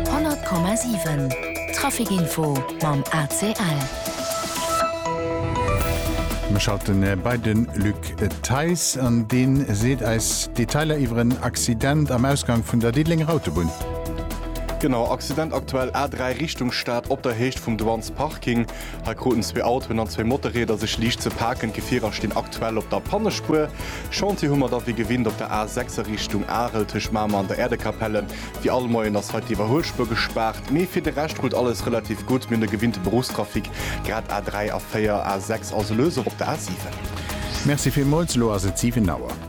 100,7 Trafic-Info mam ACL. Mir schalten bei de Luc Theis an deen seet eis Detailer iwwer en Accident am Ausgang vun der Diddelenger Autobunn. Genau, Accident aktuell A3 Richtung Stad op der Héicht vum Douansparking. Hei kruten zwee Autoen an zwee Motorrieder sech liicht ze paken. D'Gefierer stinn aktuell op der Pannespuer. Chantier hu mer da wéi gewinnt op der A6 a Richtung Arel tëscht Mamer an der Äerdekapelle. Wéi all Moien ass hei d'Iwwerhuelspuer gespaart. Mee fir de Rescht rullt alles relativ gutt. Mir hunn de gewinnte Beruffstrafic, grad A3, A4, A6, also lues och op der A7. Merci villmols, elo ass et 7 Auer.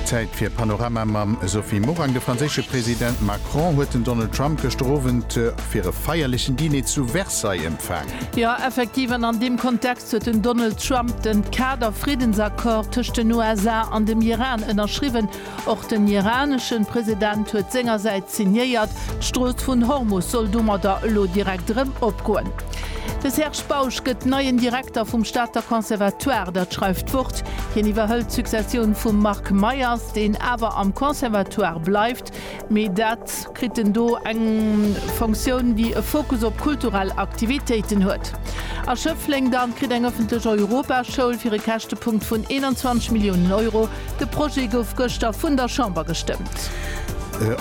Zäit fir Panorama mam Sophie Morang. De franséische President Macron huet den Donald Trump gëschter Owend fir e feierlechen Diner zu Versailles empfaangen. Jo, effektiv, an an deem Kontext huet den Donald Trump den Kader-Friddensaccord tëscht den USA an dem Iran ënnerschriwwen, Och den iraneschen President huet sengersäits signéiert, d'Strooss vun Hormus soll domadder elo direkt erëm opgoen. De Serge Bausch gëtt neien Direkter vum Stater Conservatoire, dat schreift d'Wort. Hien iwwerhëlt d'Successioun vum Marc Meyers, deen awer am Conservatoire bleift, mee dat. kritt en do eng Fonctioun, déi e Fokus op kulturell Aktivitéiten huet. A Schëffleng dann kritt eng ëffentlech Europaschoul fir e Käschtepunkt vun 21 Milliounen Euro. De Projet gouf gëschter vun der Chamber gestëmmt.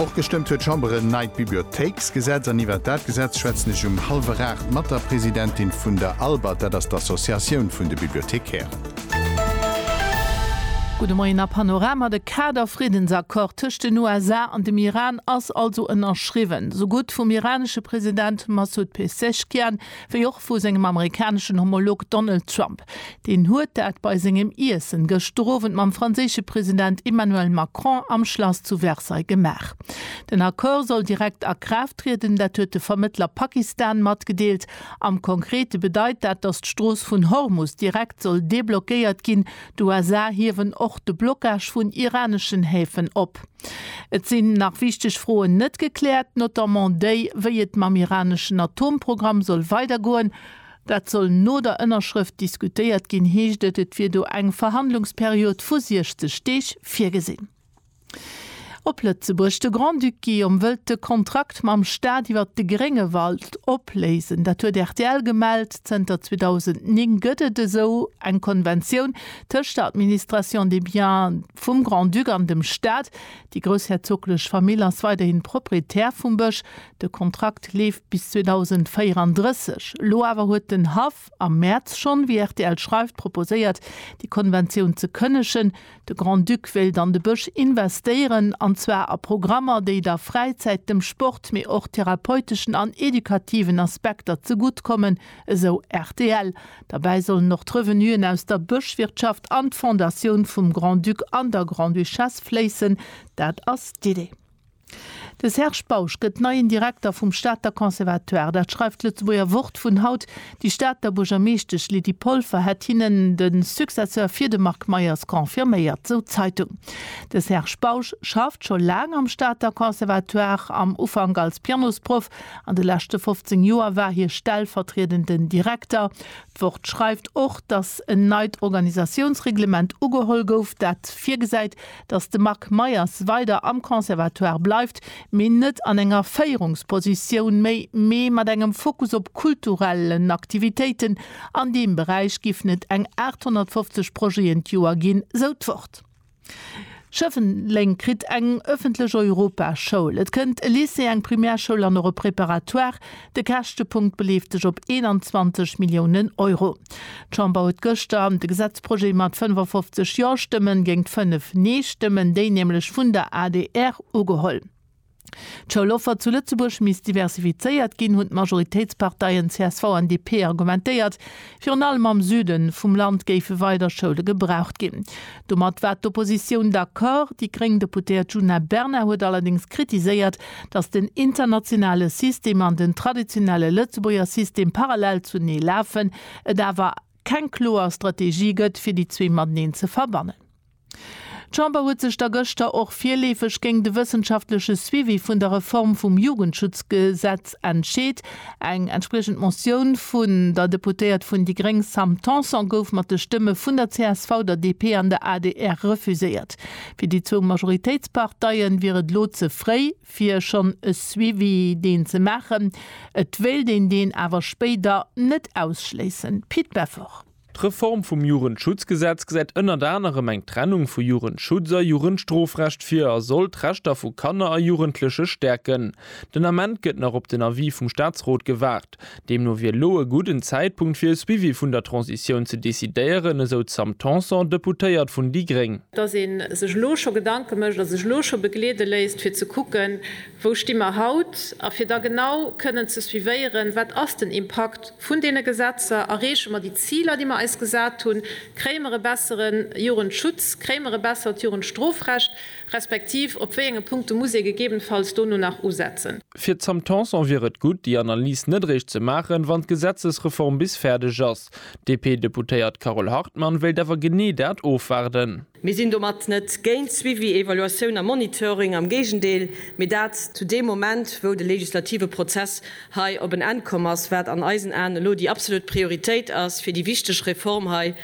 Och gestëmmt huet d'Chamber en neit Bibliothéiksgesetz. An iwwert dat Gesetz schwätzen ech um hallwer 8 mat der Presidentin vun der ALBAT, dat ass d'Associatioun vun de Bibliothekairen. Gudde Moien a Panorama, De Kader-Friddensaccord tëscht den USA an dem Iran ass also ënnerschriwwen, esou gutt vum iranesche President Massoud Pezeshkian wéi och vu sengem amerikaneschen Homolog Donald Trump. Deen huet dat bei sengem Iessen gëschter Owend mam franséische President Emmanuel Macron am Schlass zu Versailles gemaach. Den Accord soll direkt a Kraaft trieden, dat huet de Vermëttler Pakistan matgedeelt. Am Konkrete bedeit dat, datt d'Strooss vun Hormus direkt soll deblockéiert ginn. D'USA hiewen och de Blockage vun iraneschen Häfen op. Et sinn nach wichteg Froen net gekläert, notamment déi, wéi et mam iraneschen Atomprogramm soll weidergoen. Dat soll no der Ënnerschrëft diskutéiert ginn, heescht et. Et wier do eng Verhandlungsperiod vu 60 Deeg virgesinn. Op Lëtzebuerg, De Grand-Duc Guillaume wëllt de Kontrakt mam Staat iwwer de Gréngewald opléisen. Dat huet rtl gemellt. Zënter 2009 gëtt et esou eng Konventioun tëscht der Administration des biens vum Grand-Duc an dem Staat. Déi groussherzoglech Famill ass weiderhin Proprietär vum Bësch. De Kontrakt leeft bis 2034. Elo awer huet den Haff Am Mäerz schonn, wéi rtl schreift, proposéiert, déi Konventioun ze kënnegen. De Grand-Duc wéilt an de Bësch investéieren, an zwar a Programmer, déi der Fräizäit, dem Sport, mee och therapeuteschen an edukativen Aspekter zegutt kommen, esou rtl. Derbäi sollen och d'Revenuen aus der Bëschwirtschaft an d'Fondatioun vum Grand-Duc an der Grande-Duchesse fléissen. Dat ass d'Idee. De Serge Bausch gëtt neien Direkter vum Stater Conservatoire. Dat schreift d'Lëtzebuerger Wort vun haut. Déi Stater Buergermeeschtesch Lydie Polfer hätt hinnen de Successeur fir de Marc Meyers confirméiert, sou d'Zeitung. De Serge Bausch schafft scho laang am Stater Conservatoire, am Ufank als Pianosproff, an de leschte 15 Joer war hie stellvertriedenden Direkter. D'Wort schreift och, datt en neit Organisatiounsreglement ugeholl gouf, dat virgesäit, datt de Marc Meyers weider am Conservatoire bleift, mee net an enger Féierungspositioun méi, mee mat engem Fokus op kulturellen Aktivitéiten. An deem Beräich giffen et eng 850 Projeten d'Joer ginn, sou d'Wort. Schëffleng kritt eng ëffentlech Europaschoul, et kënnt e Lycée, eng Primärschoul an och e Préparatoire. De Käschtepunkt beleeft sech op 21 Milliounen Euro. D'Chamber huet gëschter de Gesetzprojet mat 55 Ja-Stëmmen géingt 5 Nee-Stëmmen, déi nämlech vun der adr, ugeholl. D'Schouloffer zu Lëtzebuerg misst diversifizéiert ginn, hunn d'Majoritéitsparteien csv an DP argumentéiert. Virun allem am Süde vum Land géife weider Schoule gebraucht ginn. Domat war d'Oppositioun d'accord. Déi gréng Deputéiert Djuna Bernard huet allerdéngs kritiséiert, datt den internationale System an den traditionelle Lëtzebuerger System parallel zunee lafen, et awer keng kloer Strategie gëtt, fir déi zwee mateneen ze verbannen. D'Chamber huet sech da gëschter och virleefeg géint e wëssenschaftleche Suivi vun der Reform vum Jugendschutzgesetz entscheet. Eng entspriechend Motioun vun der Deputéiert vun déi gréng Sam Tanson gouf mat de Stëmme vun der csv, der DP an der adr refuséiert. Fir déi zwou Majoritéitsparteien wier et elo ze fréi fir schonn e Suivi deen ze maachen. Et wéilt een deen awer spéider net ausschléissen. Pit Beffort. D'Reform vum Jugendschutzgesetz gesäit ënnert anerem eng Trennung vu Jugendschutz a Jugendstrofrecht vir a soll d'Rechter vu Kanner a Jugendleche stäerken. Den Ament gëtt nach op den Avis vum Staatsrot gewaart. Deemno wier elo e gudden Zäitpunkt fir e Suivi vun der Transitioun ze decidéieren, esou d'Sam Tanson, Deputéiert vun déi gréng. Datt ee sech elo scho Gedanke mécht a sech elo scho begleede léisst, fir ze kucken, Wou sti mer haut? A fir da genau kënnen ze suivéieren, wat ass den Impakt vun deene Gesetzer, erreeche mer déi Ziler, déi mer eis gesat hunn, kréie mer e bessere Jugendschutz, kréie mer e bessert Jugendstrofrecht, respektiv op wéi enge Punkte muss ee gegebenfalls dono nach usetzen? Fir d'Sam Tanson wier et gutt, déi Analys net eréischt ze maachen, wann d'Gesetzesreform bis fäerdeg ass. D'DP-Deputéiert Carole Hartmann wéilt awer genee dat ofwaarden. Mir sinn domat net géint Suivi, Evaluatioun a Monitoring, am Géigendeel, mee dat zu deem Moment, wou de legislative Prozess hei op en Enn komm ass, wat an eisen Aen elo déi absolut Prioritéit ass, fir déi wichteg Reform hei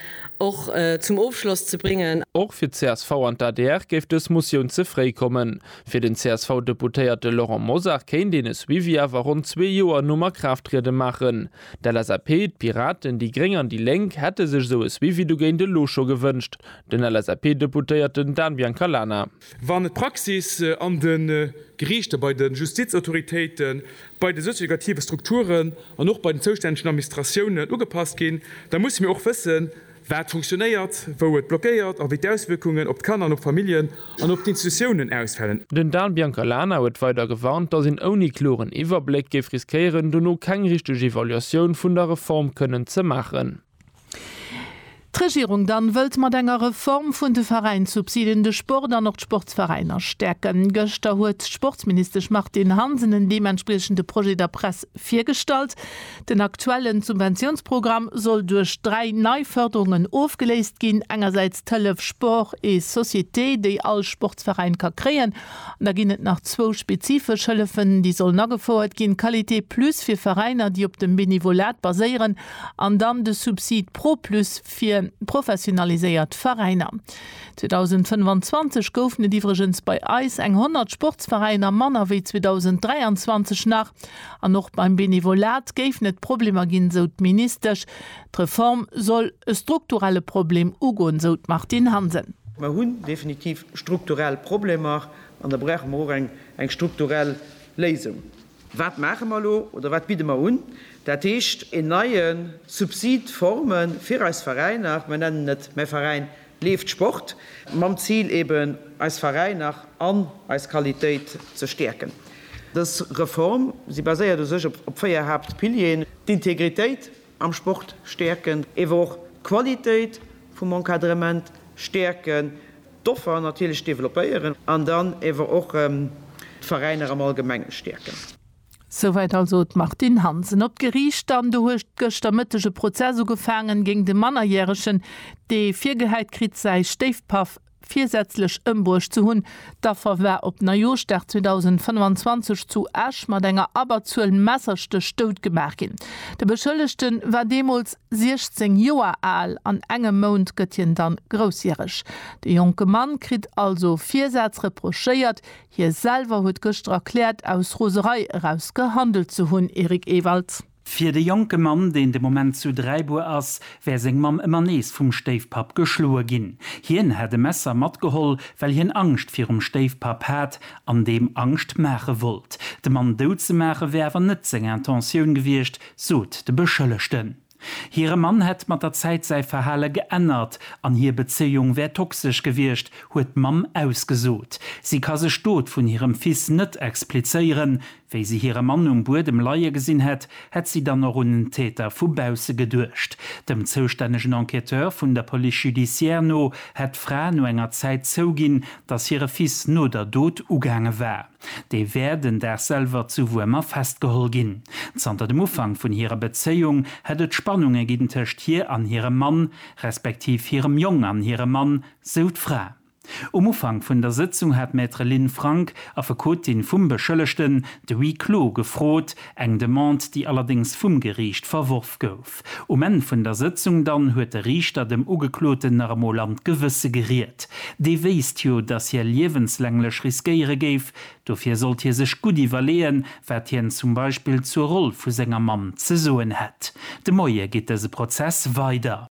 och zum Ofschloss ze bréngen. Och fir csv an d'ADR géif dës Motioun ze fréi kommen. Fir den CSV-Deputéierte Laurent Mosar kéint een e Suivi awer ronn zwee Joer nom Akraafttriede maachen. D'LSAP, d'Piraten, déi Gréng an déi Lénk hätte sech esou e Suivi dogéint elo scho gewënscht, den LSAP-Deputéierten Dan Biancalana. Wann d'Praxis an de Geriichter, bei de Justizautoritéiten, bei de sozioeducative Strukturen an och bei den zoustännegen Administratiounen ugepasst ginn, da musse mir och wëssen, wat funktionéiert, wou et blockéiert a wéi d'Auswierkungen op d'Kanner an op d'Familljen an op d'Institutiounen ausfälen. Den Dan Biancalana huet weider gewarnt, datt een ouni kloren Iwwerbléck géif riskéieren, dono keng richteg Evaluatioun vun der Reform kënnen ze maachen. D'Regierung dann wëllt mat enger Reform vun de Veräinssubsiden de Sport an och d'Sportsveräiner stäerken. Gëschter huet d'Sportsministesch Martine Hansen en deementspriechende Projet der Press virgestallt. Den aktuellen Subventiounsprogramm soll duerch dräi nei Fërderungen ofgeléist ginn, engersäits d'Hëllef Sport et Société, déi all Sportsveräin ka kréien, an da ginn et nach zwou spezifesch Hëllefen, déi sollen agefouert ginn, Qualité Plus fir Veräiner, déi op dem Benevolat baséieren, an dann de Subsid Pro Plus fir professionaliséiert Veräiner. 2025 goufen et iwwregens bei eis eng 100 Sportsveräiner manner wéi 2023 nach. An och beim Benevolat géifen et Problemer ginn, sou d'Ministesch. D'Reform soll e strukturelle Problem ugoen, sou d'Martine Hansen. Mer hunn definitiv strukturell Problemer an da brauche mer och eng strukturell Léisung. Wat maache mer elo oder wat bidde mer un? Dat heescht, een neie Subsid forme fir eis Veräiner, mer nennen et mäi Veräin Leeft Sport, mam Zil eben eis Veräiner an eis Qualitéit ze stäerken. Dës Reform, si baséiert u sech op véier Haaptpilieren, d'Integritéit am Sport stäerken, ewer och d'Qualitéit vum Encadrement stäerken, d'Offer natierlech developpéieren an dann ewer och d'Veräiner am Allgemenge stäerken. Souwäit also d'Martine Hansen op d'Geriicht. An do huet gëschter Mëtteg e Prozess ugefaangen géingt e Mannerjäregen, dee virgehäit kritt, säi Stéifpaff virsätzlech ëmbruecht ze hunn. D'Affer war op Neijooschdag 2025 zu Esch mat enger Abberzuel Messerstéch doutgemaach ginn. De Beschëllegte war deemools 16 Joer al, an engem Mount gëtt hien dann groussjäreg. De jonke Mann kritt also Virsätz reprochéiert, Hie selwer huet gëschter erkläert, aus Roserei eraus gehandelt ze hunn. Eric Ewald. Fir de jonke Mann, deen de Moment zu Dräibuer ass, wär seng Mamm ëmmer nees vum Stéifpapp geschloe ginn. Hien hätt e Messer matgeholl, well hien Angscht virum Stéifpapp hat an deem Angscht maache wollt. De Mann dout ze maache wär awer net seng Intentioun gewiescht, sot de Beschëllegten. Hire Mann hätt mat der Zäit säi Verhale geännert an hir Bezéiung wär toxesch gewiescht, huet d'Mamm ausgesot. Si ka sech d'Dot vun hirem Fils net explizéieren. Wéi si hire Mann um Buedem leie gesinn hätt, hätt si dann och un en Täter vu bausse geduecht. Dem zoustännegen Enquêteur vun der Police judiciaire no hätt d'Fra no enger Zäit zouginn, datt hire Fils no der Dot ugaange war. Déi wär den Dag selwer zu Wuermer festgeholl ginn. Zanter dem Ufank vun hirer Bezéiung hätt et Spannunge ginn tëscht hir an hirem Mann, respektiv hirem Jong an hirem Mann, sou d'Fra. Um Ufank vun der Sëtzung hat Maître Lynn Frank, Affekotin vum Beschëllegten, de Huis clos gefrot, eng Demande, déi allerdéngs vum Geriicht verworf gouf. Um Enn vun der Sëtzung dann huet de Riichter dem Ugekloten nach emol an d'Gewësse geriet. Dee wéisst jo, datt hie liewenslänglech riskéiere géif. Dofir sollt hie sech gutt iwwerleeën, wat hien zum Beispill zur Roll vu senger Mamm ze soen hätt. De Moie geet dëse Prozess weider.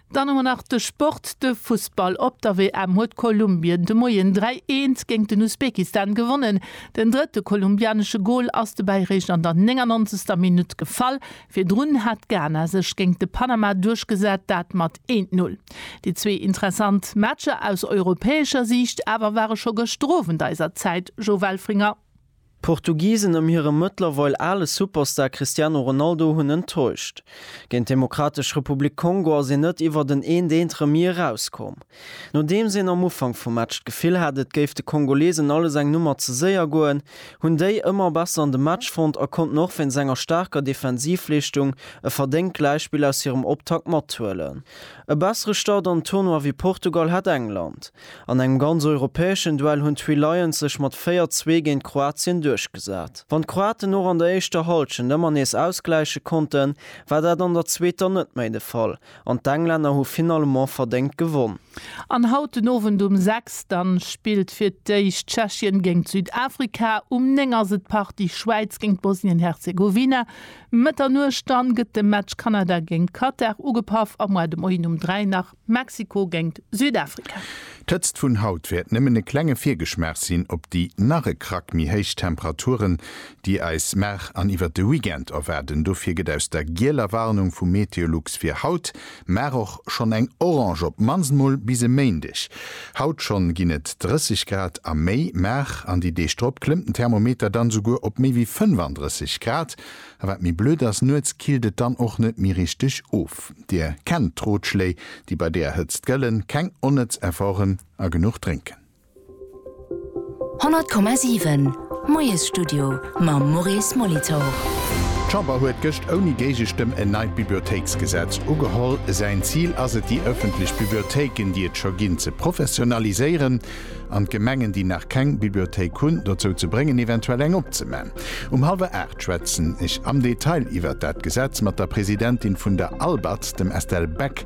Dann hu mer nach de Sport, de Fussball. Op der WM huet Kolumbien de Moien 3, 1 géint den Usbekistan gewonnen. Den drëtte kolumbianesche Gol ass dobäi eréischt an der 99. Minutt gefall. Virdrun hat Ghana sech géint de Panama duerchgesat, dat mat eent Null. Déi zwee interessant Matcher aus europäescher Siicht awer ware scho gëschter Owend eiser Zäit, Joe Welfringer. D'Portugisen ëm hire mëttlerweil ale Superstar Cristiano Ronaldo hunn enttäuscht. Géint d'Demokratesch Republik Kongo ass een net iwwert en 1, 1 Remis erauskomm. Nodeems een am Ufank vum Match d'Gefill hat, et géif de Kongolesen alles eng Nummer ze séier goen, hunn déi ëmmer besser an de Match fonnt a konnten och wéinst enger staarker Defensivleeschtung e verdéngt Gläichspill aus hirem Optakt mathuelen. E bessere Start an den Tournoi wéi Portugal hat England. An engem ganz europäeschen Duell hunn d'Three Lions sech mat 4, 2 géint Kroatien duerchgesat. Wann d'Kroaten och an der éischter Hallschent ëmmer nees ausgläiche konnten, war dat an der zweeter net méi de Fall An d'Englänner hu finalement verdéngt gewonn. An haut den Owend um 6 dann spillt fir d'éischt Tschechien géngt Südafrika. Um 9 ass et d'Partie Schwäiz géngt Bosnien-Herzegowina. Mëtternuecht dann gëtt de Match Kanada géngt Katar ugepaff a moar de Moien um 3 nach Mexiko géngt Südafrika. D'Hëtzt vun haut wäert nëmmen e klenge Virgeschmaach sinn op déi nach e Krack méi héich Temperaturen, déi eis mar an iwwert de Weekend erwaarden. Dofir gëtt aus der gieler Warnung vu Meteolux fir haut mar och schonn eng orange, op d'mannst mol bis e Méindeg. Haut schonn ginn et 30 Grad a méi, mar an déi Deeg drop klëmmt den Thermometer dann esouguer op méi wéi 35 Grad. A wat méi blöd ass, nuets killt et dann och net méi richteg of. Dir kennt d'Rotschléi, déi bei deer Hëtzt gëllen, keng onnëtz Efforten a genuch drénken. 100,7 Moiesstudio mam Maurice Molitor. D'Chamber huet gëscht ouni Géigestëmm en neit Bibliothéiksgesetz ugeholl. Säin Zil ass et, déi ëffentlech Bibliothéiken, déi et scho ginn, ze professionaliséieren an d'Gemengen, déi nach keng Bibliothéik hunn, dozou ze bréngen, eventuell eng opzeman. Um hallwer aacht schwätzen ech am Detail iwwert dat Gesetz mat der Presidentin vun der ALBAT, dem Estelle Beck.